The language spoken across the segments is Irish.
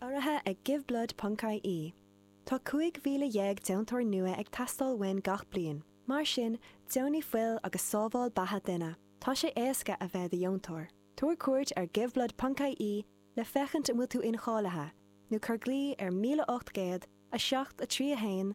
Urraithe ag Give Blood ponc ie, tá 15,000 deontóir nua ag teastáil uainn gach bliain, mar sin, deonaigh fuil agus sábháil beatha duine. Tá sé éasca a bheith i do dheontóir. Tabhair cuairt ar Give Blood ponc ie le féachaint an bhfuil tú incháilithe, nó cuir glao ar 1800 7 3 1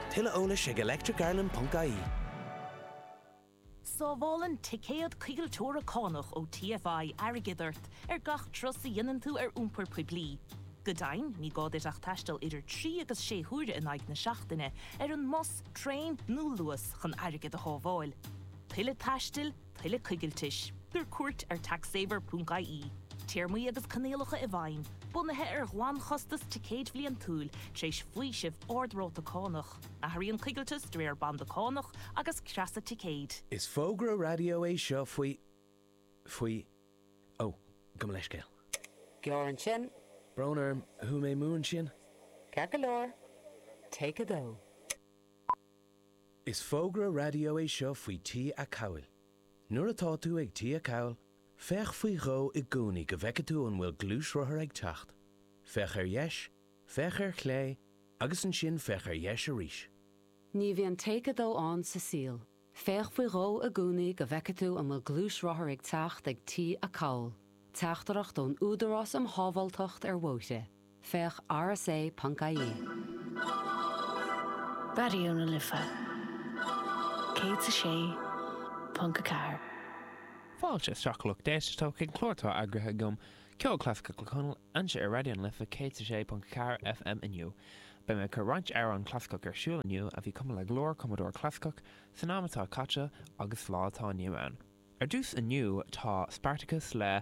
Tuilleadh eolais ag electricireland.ie. Sábhálann ticéad coigilteora cánach ó TFI airgead ort ar gach turas a dhéanann tú ar iompar poiblí. Go deimhin, ní gá duit ach taisteal idir trí agus sé huaire in aghaidh na seachtaine ar an mbus, traein nó Luas chun airgead a shábháil. Tuilleadh taistil, tuilleadh coigiltis, tabhair cuairt ar taxsaver.ie, téarmaí agus coinníollacha i bhfeidhm, bunaithe ar ghlanchostas ticéid bhliantúil, tar éis faoiseamh ardráta cánach, athraíonn coigilteas de réir banda cánach agus creasa ticéid. Is fógra raidió é seo faoi, faoi, ó, gabh mo leithscéal. Gearr ansin. Brón orm, chuaigh mé amú ansin. Ceart go leor, take 2. Is fógra raidió é seo faoi T-acomhail. Nuair atá tú ag T-acomhal, féach faoi dhó i gcónaí go bhfeice tú an bhfuil gluaisrothar ag teacht. Féach ar dheis, féach ar chlé, agus ansin féach ar dheis arís. Ní bhíonn Take 2 ann sa saol. Féach faoi dhó i gcónaí go bhfeice tú an bhfuil gluaisrothar ag teacht ag T-acomhal. Teachtaireacht ón Údarás um Shábháilteacht ar Bhóithre. Féach rsa.ie. Raidió na Life 106.4. Fáilte isteach lucht éisteachta, chuig an gclár atá eagraithe agam, Ceol Clasaiceach le Conal, anseo ar Raidió na Life 106.4 FM inniu. Beidh mé ag cur roinnt amhrán clasaiceach ar siúl inniu a bhí cumtha le go leor cumadóirí clasaiceach san am atá caite agus sa lá atá inniu ann. Ar dtús inniu tá Spartacus le.